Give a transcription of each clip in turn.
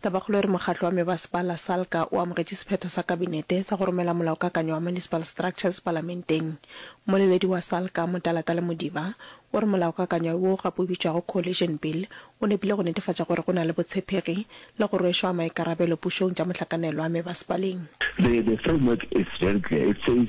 Tabakgolo e re mokgatlo wa mebasepala, Salga, o amogetše sephetho sa Kabinete sa go romela molaokakanyo wa Municipal Structures Palamenteng. Mmoleledi wa Salga, Motalatala Modiba, o re molaokakanyo wo gape o bitšwago Coalition Bill o nepile go netefatša gore go na le botshepegi le go rwešwa maikarabelo pušong tša mohlakanelwa mebasepaleng. The the framework is very clear. It says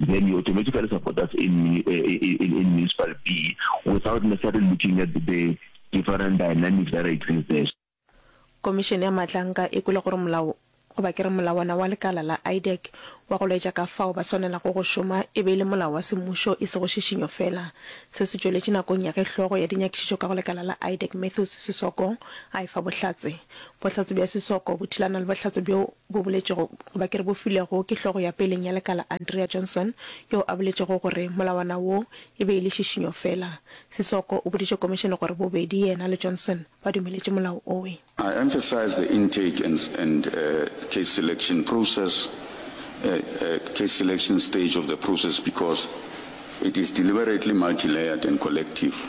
Then he automatically support us in, in, in Municipal B without necessarily looking at the different dynamics that exist there. Komišene ya Matlanka e kwele gore molao, goba ke re molawana wa lekala la IDEC wa go laetša ka fao ba swanelago go šoma e be e le molao wa semmušo e sego šišinyo feela. Se se tšweletše nakong ya ge hlogo ya dinyakišišo ka go lekala la IDEC Matthews Sisoko a efa bohlatse. Bohlatse bja Sisoko bo thulana le bohlatse bjo bo boletšego, goba ke re bo filwego ke hlogo ya peleng ya lekala Andrea Johnson, yoo a boletšego gore molawana wo e be e le šišinyo feela. Sissoko o boditše komišene gore bobedi yena le Johnson ba dumeletše molao owe. I emphasize the intake and and case selection process case selection stage of the process because it is deliberately multilayered and collective.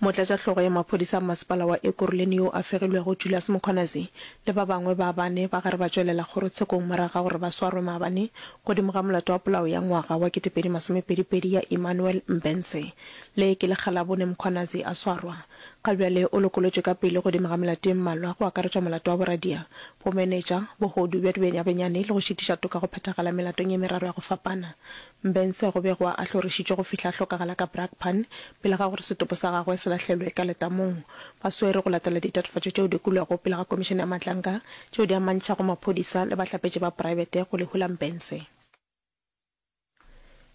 Motlatšahlogo ya maphodisa a masepala wa Ekurhuleni yo a fegilwego Julius Mkhwanazi le ba bangwe ba bane ba gare ba tšwelela kgorotshekong morago ga gore ba swarwe maabane godimo ga molato wa polao ya ngwaga wa kete pedi masome pedi pedi ya Emmanuel Mbense. Le ke lekga la bone Mkhwanazi a swarwa. Ga bjale o lokolotšwe ka pele godimo ga melato e mmalwa go akaretšwa molato wa boradia, bomenetša, bohodu bja dibenyabenyane le go šitiša toka go phethagala melatong e meraro ya go fapana. Mbence go bego a hlorišitšwe go fihla a hlokagala ka Brakpan pele ga gore setopo sa gagwe se lahlelwe ka letamong. Ba swere go latela ditatofatšo tšeo di kwilwego pele ga Komišene ya Matlanka tšeo di amantšhago maphodisa le bahlapetši ba praebete go lehu la Mbence.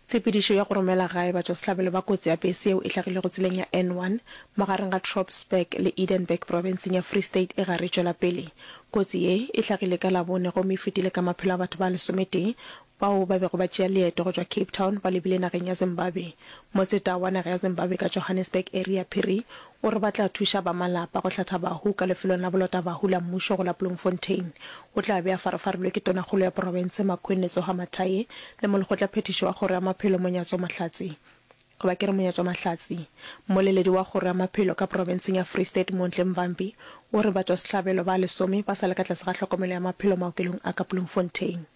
Tshepedišo ya go romela gae batšwasehlabelo ba kotsi ya bese yeo e hlagilego tseleng ya N1 magareng ga Tropsburg le Edenburg profenseng ya Free State e gare e tšwela pele. Kotsi ye e hlagile ka Labone gomme e fetile ka maphelo a batho ba lesometee, bao ba bego ba tšea leeto go tšwa Cape Town ba lebile nageng ya Zimbabwe. Moseta wa naga ya Zimbabwe ka Johannesburg Aria Phiri o re ba tla thuša ba malapa go hlatha bahu ka lefelong la bolota bahu la mmušo go la Bloemfontein. O tla be a farafarilwe ke tonakgolo ya porofense Makhwenne Tsoha Mathaye le molekgotla phethiši wa kgoro ya maphelo Monyatso Mahlatsi goba ke re Monyatso Mahlatsi. Mmoleledi wa kgoro ya maphelo ka porofenseng ya Free State Montle Mvambi o re batšwasehlabelo ba lesome ba sa le ka tlase ga tlhokomelo ya maphelo maokelong a ka Bloemfontein.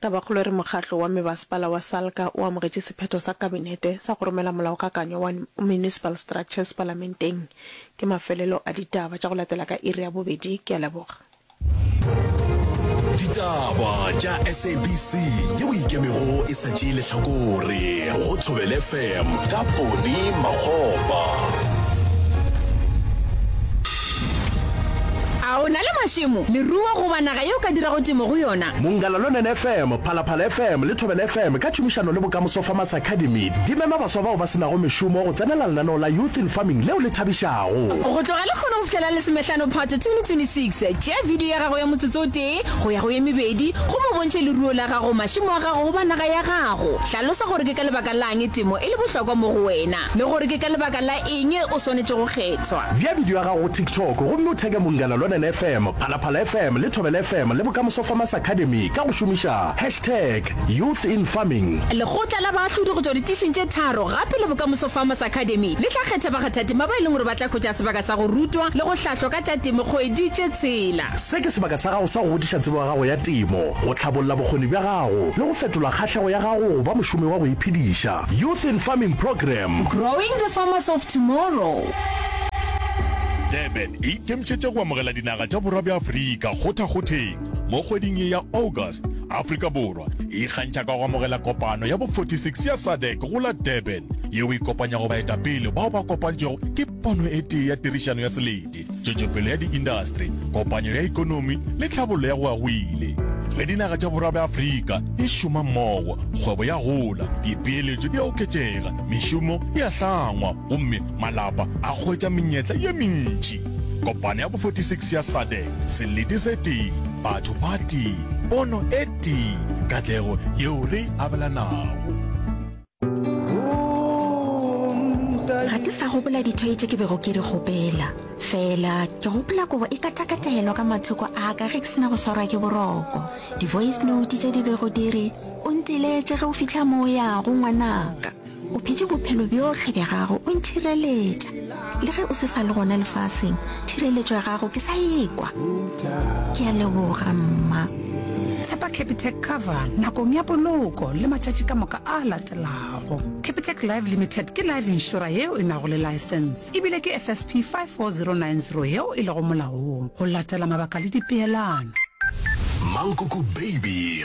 Tabakgolo e re mokgatlo wa mebasepala wa Salga o amogetše sephetho sa Kabinete sa go romela molaokakanywa wa Municipal Structures Palamenteng. Ke mafelelo a ditaba tša go latela ka iri ya bobedi. Ke a leboga. Ditaba tša SABC ye o ikemego e sa tšee lehlakore go Thobel FM ka Ponny Makgopa. A o na le mašemo, leruo goba naga yeo o ka dirago temo go yona? Mongalalunen FM, Phalaphala FM le Thobela FM ka tšhomišano le Bokamoso Farmers Academy di mema baswa bao ba se nago mešomo go tsenela lenaneo la Youth in Farming leo le thabišago. Go tloga lehono go fihla la Lesomehlano Phato 2026, tšea video ya gago ya motsotso o tee go ya go ye mebedi gomme o bontšhe leruo la gago, mašemo a gago goba naga ya gago. Hlalosa gore ke ka lebaka la'ng temo e le bohlokwa mo go wena. le gore ke ka lebaka la eng o swanetše go kgethwa. Bea bidio ya gago go TikTok gomme o theke Mungana Lonene FM, Phalaphala FM le Thobela FM le Bokamoso Farmers Academy ka go šomiša hashtag YouthInFarming. Lekgotla la baahlodi go tšwa ditišing tše tharo gape le Bokamoso Farmers Academy le tla kgetha bakgathatema ba e leng gore ba tla hwetša sebaka sa go rutwa le go hlahlwa ka tša temo kgwedi tše tshela. Se ke sebaka sa gago sa go godiša tsebo ya gago ya temo, go hlabolla bokgoni bja gago le go fetola kgahlego ya gago go ba mošomi wa go iphediša. Youth in Farming Programme. Growing the Farmers of Tomorrow. Durban e ikemišetše go amogela dinaga tša borwa bja Afrika kgothakgotheng mo kgweding ye ya August. Afrika Borwa e ikgantšha ka go amogela kopano ya bo 46 ya SADC go la Durban, yeo e kopanyago baetapele bao ba kopantšwego ke pono e tee ya tirišano ya selemo. tšwetšopele ya diindastri, kopanyo ya ikonomi le tlhabollo ya go agwile. Ge dinaga tša Borwa bja Afrika di šoma mmogo, kgwebo ya gola, dipeeletšo di a oketšega, mešomo e a hlangwa gomme malapa a hwetša menyetla ye mentši. Kopano ya bo 46 ya SADC, selete se tee, batho ba tee, pono e tee, katlego yeo re e abelanago. ga ke sa gopola dithoi tše ke bego ke di gopela fela ke gopola kobo e katakatelwa ka mathoko a ka ge ke sena go swarwa ke boroko di-voice note tše di bego di re o ntiletše ge o fitlha mo o yago ngwanaka o phetse bophelo bjohle bja gago o ntšhireletša le ge o se sa le gona lefaseng thireletšo ya gago ke sa ekwa ke a leboga mma tshepa capitec cover nakong ya poloko le matšatši ka moka a latelago capitec live limited ke live insura yeo e nago le license ebile ke fsp 54090 yeo e lego molaong go latela mabaka le dipeelano Mankoko Baby